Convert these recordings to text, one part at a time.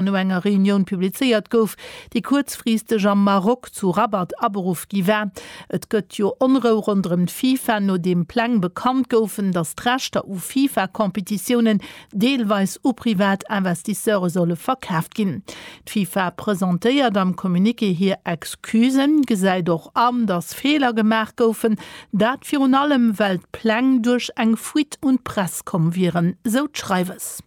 no enger Reunioun publizéiert gouf, déi kuerzfristeg am Maroc zu Rabat aberuff gi war. Et gëtt jo Onrou ronderëm d'FIFA, nodeem Pläng bekannt goufen, datt d'Rechter u FIFA-Competitiounen deelweis u privat Investisseure solle verkaaft ginn. D'FIFA presentéiert am Communiqué hir Excusen, gesäit och an, datt Feeler gemaach goufen, dat virun allem, well d'Pläng duerch eng Fuite un d'Press komm wieren, sou d'Schreiwes.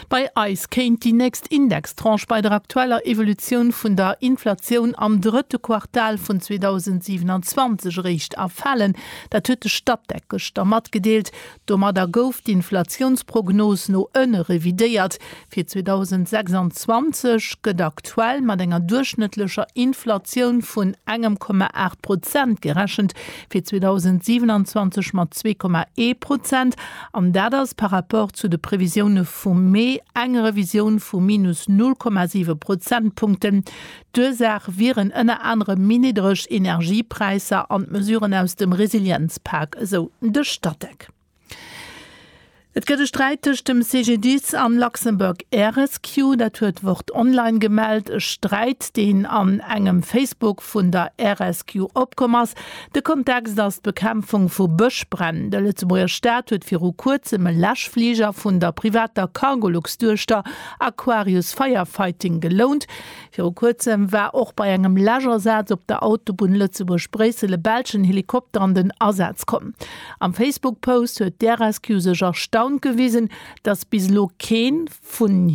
Bei eis kéint déi nächst Indextranche bei der aktueller Evolutioun vun der Inflatioun am drëtte Quartal vun 2027 eréischt erfalen. Dat huet de Statec gëschter matgedeelt. Domadder gouf d'Inflatiounsprognos no ënne revidéiert. Fir 2026 gëtt aktuell mat enger duerchschnëttlecher Inflatioun vun engem Komma aacht Prozent gerechent, fir 2027 mat zwee Komma ee Prozent an dat ass par rapport zu de Previsioune vum Mee eng Revisioun vu minus null Komma siwe Prozentpunkten. D'Ursaach wieren ënner anerem méi niddreg Energiepräisser an d'Mesuren aus dem Resilienzpak, esou de Statec. Et gëtt e Sträit tëscht dem CGDIS an Luxembourg air-rescue. Dat huet Wort Online gemellt. E Sträit, deen an engem Facebook vun der air-rescue opkomm ass. De Kontext ass d'Bekämpfung vu Bëschbränn. De Lëtzebuerger Staat huet viru kuerzem e Läschfliger vun der privater Cargolux-Duechter Aquarius Firefighting gelount. Viru kuerzem war och bei engem Läschasaz op der Autobunn Lëtzebuerg-Bréissel e belschen Helikopter an den Asaz komm. Am Facebook-Post huet d'RSQ sech erstaunt gewisen, datt bis elo kee vun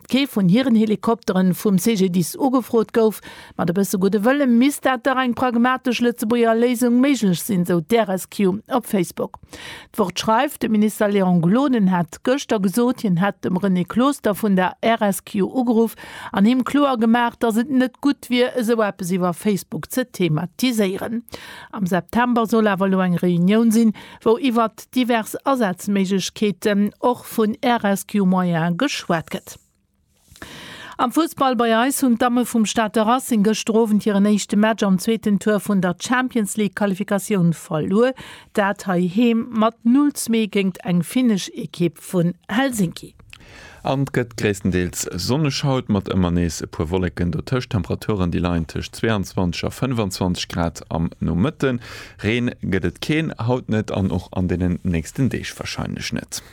kee vun hiren Helikoptere vum CGDIS ugefrot gouf. Mat e bësse gudde Wëlle misst dat dach eng pragmatesch Lëtzebuerger Léisung méiglech sinn, sou d'RSQ op Facebook. D'Wort schreift, De Minister Léon Gloden hat gëschter gesot, hien hätt dem René Closter vun der RSQ ugeruff an him kloer gemaach, datt et net gutt wier, esou eppes iwwer Facebook ze thematiséieren. Am September soll awer elo eng Reunioun sinn, wou iwwert divers Asazméiglechkeeten, och vun RSQ-Moyene, geschwat gëtt. Am Fussball bei eis hunn d'Damme vum Stater Racing gëschter Owend hiren éischte Match am zweeten Tour vun der Champions League Qualifikatioun verluer, dat hei heem mat 0, 2 géingt eng finnesch Ekipp vun Helsinki. An t gëtt gréisstendeels sonneg haut, mat ëmmer nees e puer Wolleken dotëscht. Temperaturen déi leien tëscht 22 a 25 Grad am Nomëtten. Reen gëtt et keen, haut net an och an deenen nächsten Deeg warscheinlech net.